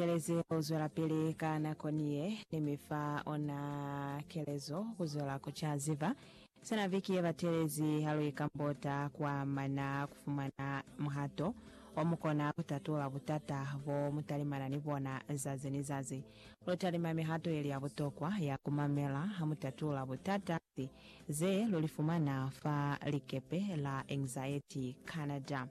Ikeleze ku zwelapili ka nako ni ye ni mi fa ona kelezo ku zwela ku ca ziba. Sina viki ye batelezi ha lu ikambota kwa mana ku fumana muhato o mu kona ku tatula butata bo mu talimana ni bona zazi ni zazi. Lu talima mihato ye li ya butokwa ya ku mamela ha mu tatula butata ze lu li fumana fa likepe la Anxiety Canada.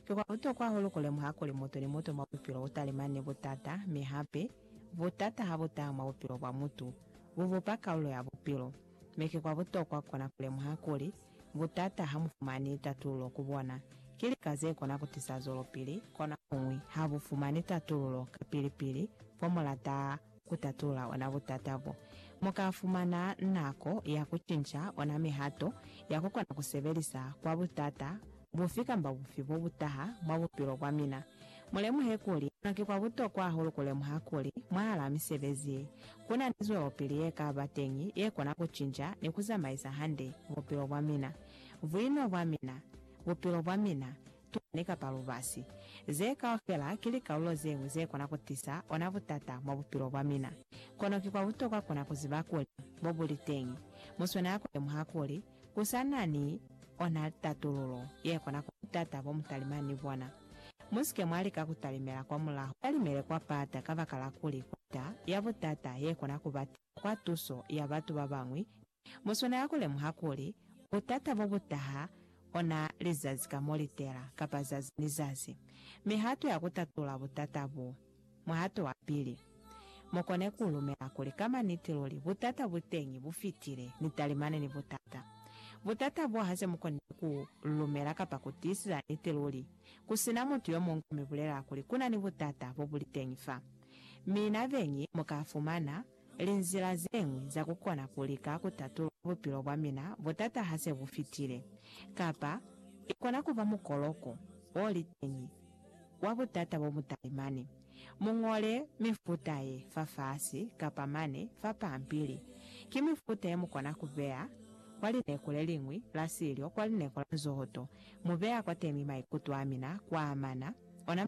Ki kwa butokwa hahulu ku lemuha kuli mutu ni mutu mwa bupilo u talimana ni butata, mi hape, butata ha bu taha mwa bupilo bwa mutu, bu bupa kalulo ya bupilo. Mi ki kwa butokwa kona ku lemuha kuli, butata ha mu fumani tatululo ku bona. Ki lika ze kona ku tisa zwelopili, konohañwi ha bu fumani tatululo kapili-pili, fo mu lata ku tatula ona butata bo. Mu ka fumana nako ya ku cinca ona mihato ya ku kona ku sebelisa kwa butata bufi kamba bufi bo bu taha mwa bupilo bwa mina. Mu lemuhe kuli, ki kwa butokwa hahulu ku lemuha kuli, mwahalaa misebezi ye, ku na ni zwelopili ye ka ba teñi ye kona ku cinca ni ku zamaisa hande bupilo bwa mina, buino bwa mina, bupilo bwa mina, tuna ni kapa lubasi. Ze kaufela ki likalolo zeñwi ze kona ku tisa ona butata mwa bupilo bwa mina. Kono ki kwa butokwa kuna ku ziba kuli mo bu li teñi. Mu swanela ku lemuha kuli ku sa na ni ona tatululo ye kona kwa butata bo mu talimani ni bona. Mu si ke mwa lika ku talimela kwa mulaho. Talimele kwa pata kabakala kuli kota ya butata ye kona ku ba tisa kwa tuso ya batu ba bañwi Muswana ya ku lemuha kuli butata bo bu taha ona li zazi ka mo litela, kapa zazi ni zazi. Mihato ya ku tatula butata bu. Muhato wa pili, Mu kone ku lumela kuli ka maniti luli butata bu teñi bu fitile ni talimani ni butata. Butata bo ha se mu konile ku lumela kapa ku tiisisa niti luli, ku si na mutu yo muñwi ku mi bulelela kuli ku na ni butata bo bu li teñi fa. Mi na beñi mu ka fumana. Linzila zeñwi za kukona kulika kutatula bupilo bwamina butata hase bufitile, kapa ikona kuba mukoloko oliteñi wa butata bobutalimani. Muñole mifuta ye fafasi kapa mane fa pampili. Ki mifuta yemukona kubeya kwa lineku leliñwi la silyo, kwa lineku la nzohoto, mubeya kwatemi maikuto amina kwaamana ona